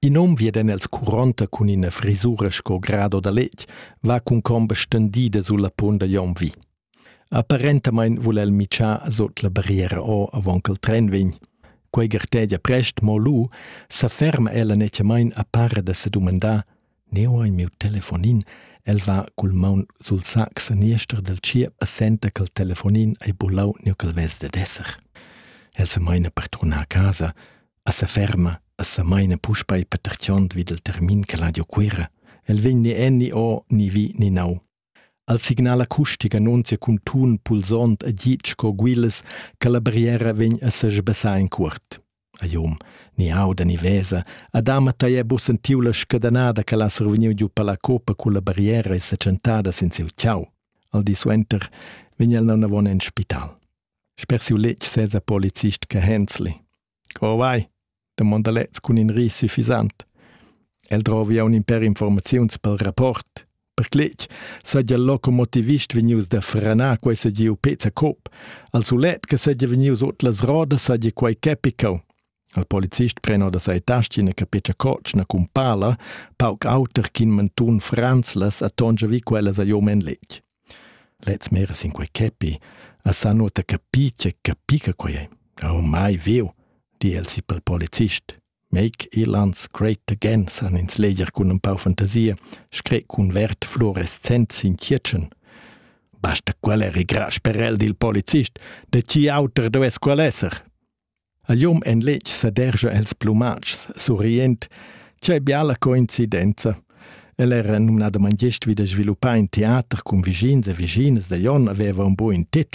In hom viedan els curonta cun ina frisura sco grado da letg, va cun comba stendida sulla punt da Jon vi. Apparentamain vul el mitschar sut la barriera o avon ch'el tren vegn. Quei gartegia prest, mo lu sa ferma ella nettiamain a para da sedumandar: Ne ho ei miu telefonin? El va cul maun sul sac saniester del tschiep e senta ch'el telefonin ei bulau niu ch'el vess dad esser. El se meina per turnar a casa, a seferma e semaina puspei patertgiond vid il termin che l'ha giu Cuera. El vegn ni en ni o ni vi ni nau. Al signal acustic annunzia cun tun pulsond e git sco guilas che la barriera vegn a sesbessar in cuort. A jom, ni auda ni vesa, a dama tei è bu sentiu la scadanada che l'ha survegniu giu per la copa cu la barriera e seccentada sin siu ciau. Al di suenter vegn el non avon en spital. Sper siu letg sesa policist che Hensli. Co vai? domonda lez cun in ris suffisant. El drovi aun in per informaziuns pel rapport. Per cletg saja locomotivist vegnius da frenar quei segiu pezza cop. Al sulet che segia vegnius ot las rodas saja quei capicau. Il polizist pren da sai tastin e capescha cotschna cun pala, pauc auter ch'in mentun franzlas a tongia vi quellas a jom en letg. Lez mera sin quei capi, a sa nota capi che capica quei è. Oh, mai veu, di el si pel polizist. Make Irlands great again, san ins leger cun un pau fantasia, scret cun vert fluorescent sin chietschen. Basta quel er igras per el dil polizist, de ci auter does quel esser. A liom en letg sedergia els plumatschs, surriend. Tgei biala coincidenza! El era numnadamein gest vid sviluppar in teater cun vischins e vischinas da Jon aveva un buc in tit.